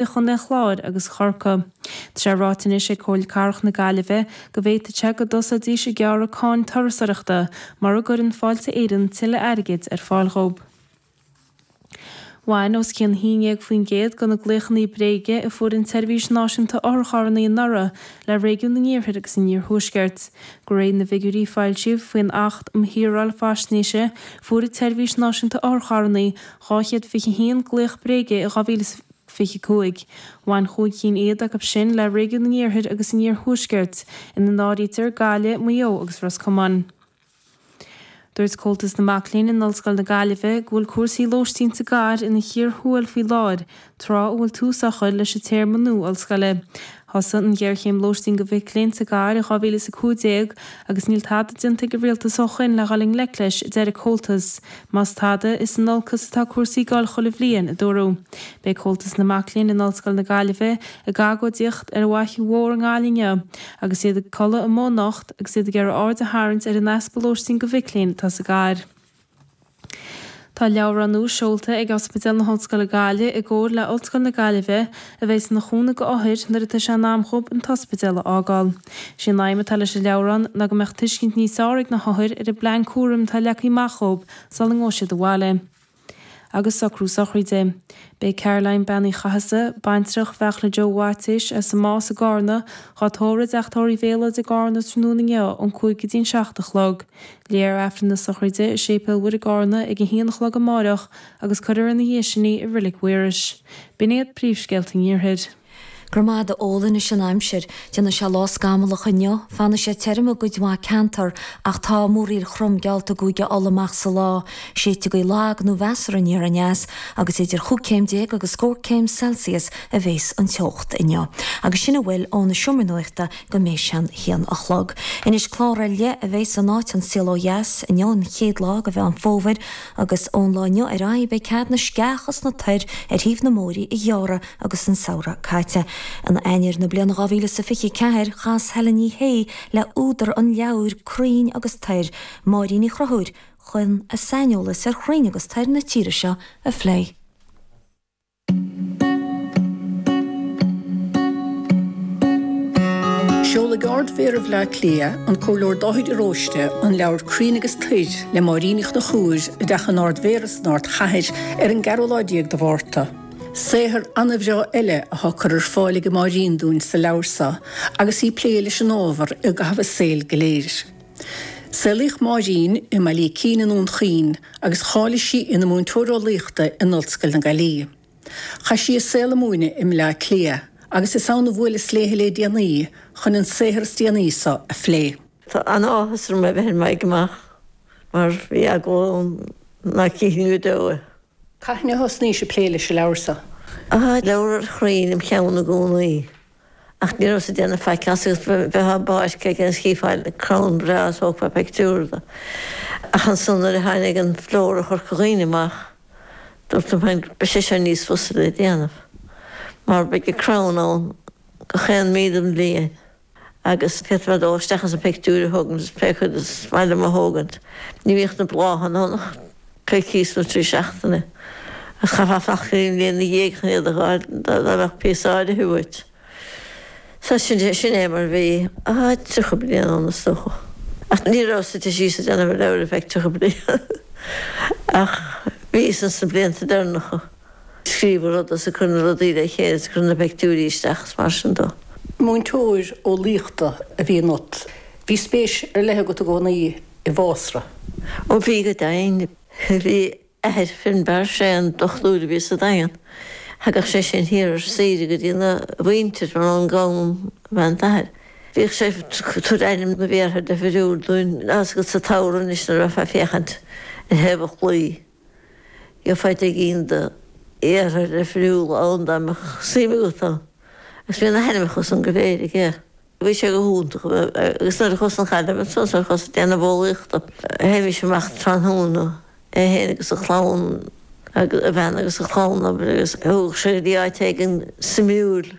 i gcontae an Chláir agus Chorcaí. Tá sé ráite anois ag Comhairle Cathrach na Gaillimhe go bhféadfadh sé go dtosóidís ag gearradh cáin turasoireachta mura gcuireann Fáilte Éireann tuilleadh airgid ar fáil dhóibh. Bhain os cionn 11% de na glaochanna bréige a fuair an tSeirbhís Náisiúnta Otharcharranna anuraidh le réigiún an Iarthair agus an Iarthuaiscirt. De réir na bhfigiúirí a foilsíodh faoin Acht um Shaoráil Faisnéise, fuair an tSeirbhís Náisiúnta Otharcharranna 221 glaoch bréige i 2025. Bhain chúig cinn fhichead acu sin le réigiún an iarthair agus an iarthuaiscirt, ina n-áirítear Gaillimh, Maigh Eo agus Ros Comáin. Dúirt Comhaltas na Mac Léinn in Ollscoil na Gaillimhe go bhfuil cúrsaí lóistín sa gcathair ina chíor thuathail faoi láthair tráth a bhfuil tús á chur leis an téarma nua ollscoile. Thosaigh an ghéarchéim lóistín do mhic léinn sa gcathair i 2015 agus níl tada déanta ag an rialtas ó shoin le dhul i ngleic leis, a deir an Comhaltas. Más tada, is in olcas atá cúrsaí ag goil chuile bhliain, a dúradh. Beidh Comhaltas na Mac Léinn in Ollscoil na Gaillimhe ag agóidíocht ar an bhFaiche Mhór i nGaillimh inniu agus iad ag codladh amuigh anocht agus iad ag iarraidh aird a tharraingt ar an easpa lóistín do mhic léinn atá sa gcathair. Tá leabhrán nua seolta ag Ospidéal na hOllscoile Gaillimh i gcomhar le Ollscoil na Gaillimhe a bheidh ina chúnamh do othair nuair atá sé in am dhób an t-ospidéal a fhágáil. Is í an aidhm atá leis an leabhrán ná go mbeadh tuiscint níos fearr ag na hothair ar an bplean cúraim atá leagtha amach dhób sula ngabhfaidh siad abhaile. agus socrú sochraide. Beidh Caroline Bean Uí Chathasaigh, baintreach Mhichael Joe Mhaitiais as an Más i gCárna, dhá tórramh i dteach tórraimh Mhéalóid i gCárna tráthnóna inniu ón 5 go dtí an 7 a chlog. Léifear Aifreann na sochraide i Séipéal Mhuire i gCárna ag a haon a chlog amáireach agus cuirfear ina dhiaidh sin í i Reilig Mhaorais. B'in iad príomhscéalta an Iarthair. Go raibh maith agat a Eoin. Anois an aimsir. Déanfaidh sé lá scamallach inniu. Fanfaidh sé tirim i gcuid mhaith ceantar, ach tá múraíl throm geallta i gCúige Uladh amach sa lá. Séidfidh gaoth lag nó mheasartha aniar aneas, agus idir chúig céim déag agus scór céim Celsius a bhéas an teocht inniu. Agus sin a bhfuil ó na seomraí nuachta go mbeidh sé an haon a chlog. Anois clár ar leith a bheidh san áit An Saol ó Dheas inniu an chéad lá de Mheán Fómhair agus ón lá inniu ar aghaidh beidh cead na sceacha is na toir ar thaobh na mbóithrí a ghearradh agus an samhradh caite. In Eanáir na bliana 2024 chas Helen Ní Shé le húdar an leabhair Crainn agus Toir, Máirín Uí Chonchubhair, chun a saineolas ar chrainn agus toir na tíre seo a phlé. Seolfaidh Ard-Mhéara Bhleá Cliath, an Comhairleoir Dáithí de Róiste, an leabhar Crainn agus Toir le Máirín Uí Chonchubhair i dTeach an Ard-Mhéara san Ardchathair ar an gceathrú lá déag de Mhárta. Saothar an-bhreá eile atá curtha ar fáil age Máirín dúinn sa leabhar seo agus í ag plé leis an ábhar i gcaitheamh a saoil go léir. Saolaíodh Máirín i mBaile Ícín i nDún Chaoin agus cháiligh sí ina múinteoir eolaíochta in Ollscoil na Gaillimhe. Chaith sí a saol ag múineadh i mBleá Cliath agus is ann a bhuaileas léi le déanaí chun an saothar is déanaí seo a phlé. Tá an-áthas orm é a bheith ar m'aghaidh amach mar bhí eagal orm ná cífinn go deo é. Cathain a thosnaís ag plé leis an leabhar seo? Tá leabhar ar chrainn im cheann i gcónaí. ach ní rabhas ag déanamh faic as agus bheadh an báisteach againn agus chífeá crann breá agus thógfá pictiúr de. Ach ansan nuair a tháinig an Flóra Chorca Dhuibhne amach dúrt liom féin beidh sé seo níos fusa le déanamh mar beidh an crann ann gach aon mí den bhliain agus féadfad dul isteach agus an pictiúir a thógaint agus pé cuid is maith liom a thógaint. Ní bhíodh na bláthanna ann ach. coicís nó trí seachtaine, ach chaithfeá fanacht aon bhliana dhéag chun iad a dh'fháil dá mbeadh píosa áirithe uait. Sea, sin é mar bhí. Tá tríocha bliain ann, is dócha. Ach ní rabhas suite síos ag déanamh an leabhair ar feadh tríocha bliain, ach bhíos ins na blianta deireanacha. Scríobh an rud is ag cur na rudaí le chéile is ag cur na peictiúirí isteach is mar sin dó. Múinteoir eolaíochta a bhí ionat. Bhí spéis ar leith agat i gcónaí i bhfásra. Ó bhí go deimhin. Bhí athair Finbarr, sé an dochtúir a bhí sa Daingean. Thagadh sé sin thiar ar saoire go dtína mhuintir mar uncail dom ab ea an t-athair. Bhíodh sé ag tabhairt ainm na bhféartha deifiriúil dúinn agus sa tsamhradh anois nuair a bheifeá ag féachaint ar thaobh an chlaí. Gheofá fiche éigin de fhéartha difriúla ann dá mbeadh suim agat ann, agus bhí na hainmneacha san go léir aige. Bhí sé go hiontach agus nuair a chuas go Gaillimh ansan nuair a chuas ag déanamh bitheolaíochta, théimís amach tráthnóna, é féin agus a chlann, a bhean agus a chlann, abair, agus thóg sé go dtí áit éigin suimiúil.